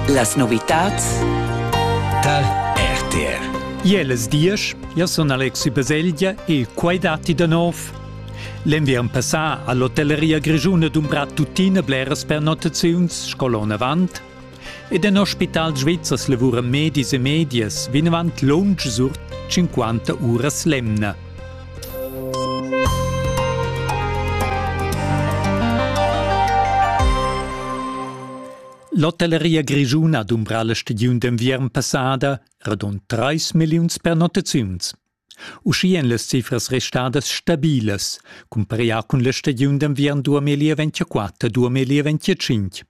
Las novitads da RTR Jeles diesch, io sun Alexi Baselgia e quai datti da nov. L'enviern passà a l'hotelleria grischuna dumbra tuttina bleras pernottaziuns sco l'on avant ed en ospital svizzers lavuran medis e medias vinavant lunsch sur 50 uras l'emna. L'hotelleria grischuna dumbra la stagiun d'enviern passada radund 3 milliuns pernottaziuns. Uschia èn las cifras restadas stabilas, cumparià cun la stagiun d'enviern 2024-2025.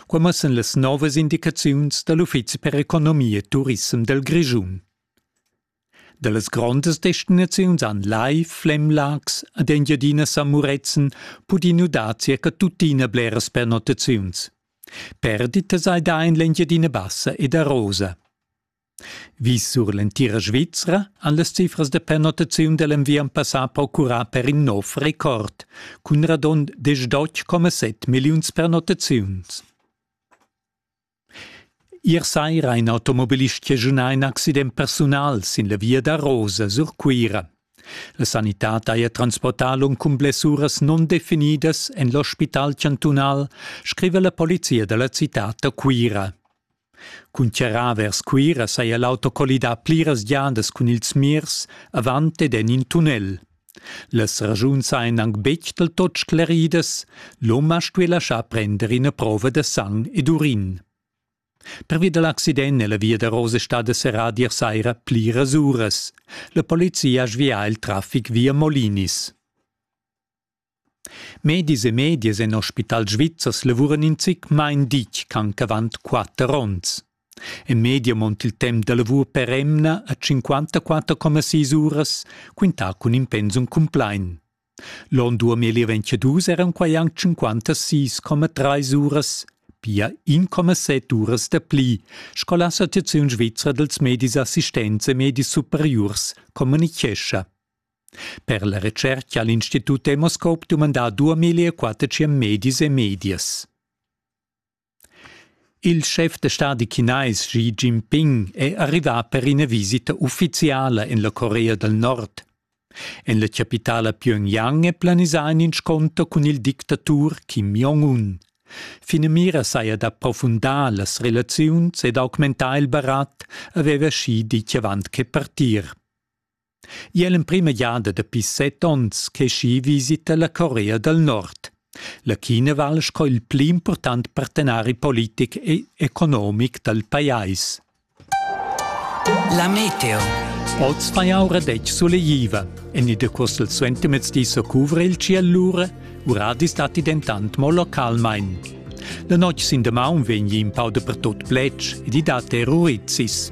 Qua mussan las novas indicaziuns da l'Uffizi per economia e turissem dal Grischun. Dallas grondas destinaziuns han Lai, Flemlags ed Engiadina San Murezzan pudì nudar circa tuttina bleras pernottaziuns. Perditas hai dà en l'Engiadina Bassa ed a Rosa. Vis sur l'entira Svizra han las cifras da pernottaziun da l'enviern passà procurà per in nov record, cun radund 18,7 milliuns pernottaziuns. Ier saira ha in automobilist chaschunà in accident persunal sin la via da Rosa sur Cuira. La sanitad haja transportà lung cun blessuras nundefinidas en l'ospital chantunal, scriva la polizia da la citad da Cuira. Cun charrà vers Cuira saja l'auto collidà pliras giadas cun ils mirs avant ed en in tunnel. Las ragiuns ein aunc betg del tot scleridas, l'hom ha stuì laschar prender ina prova da sang ed urin. Pervia dal accident è la via da Rose stada serrada ier saira pliras uras. La polizia ha svià il traffic via Molinis. Medis e medias en Ospital Svizzers lavuran in zic main ditg ch'anc avant quatter onns. En media mont il temp da lavur per emna a 54,6 uras, quintà cun in pensum cumplain. L'onn 2022 eran quai anc 56,3 uras, pia 1,7 uras da pli, sco l'Associaziun svizra dals medis assistents e medis superiurs communitgescha. Per la retscherca ha l'Institut Demoscope dumandà duamillia quattetschien medis e medias. Il schef da stadi chinais Xi Jinping è arrivà per ina visita uffiziala en la Corea dal Nord. En la chapitala Pyongyang è planisà in inscunter cun il dictatur Kim Jong-un. Finamira saja d'approfundar las relaziuns ed augmentar il barat, aveva Xi ditg avant che partir. Igl è l'emprima giada dapi set onns che ski visita la Corea dal Nord. La China val sco il pli impurtant partenari politic e economic dal pajais. La meteo. Oz fa jau radetg sulegliva. En il decurs dal suentermezdi so cuvra il ciel lura, uradis datti dentant mo localmain. La notg sin damaun vegn in pau dapertut pletg ed i dat erurizis.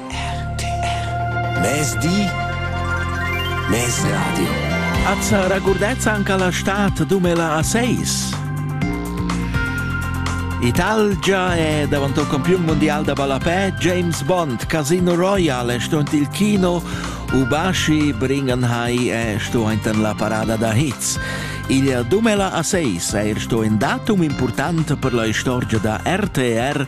RTR Mezdi Mez Radio As regurdeți anche la stat 2006? Italgia è davanti al campione mondiale da ballapè James Bond. Casino Royale è stunt il kino. Ubashi Bringenhai è stunt in la parada da hits. Il 2006 è er in datum importante per la storia da RTR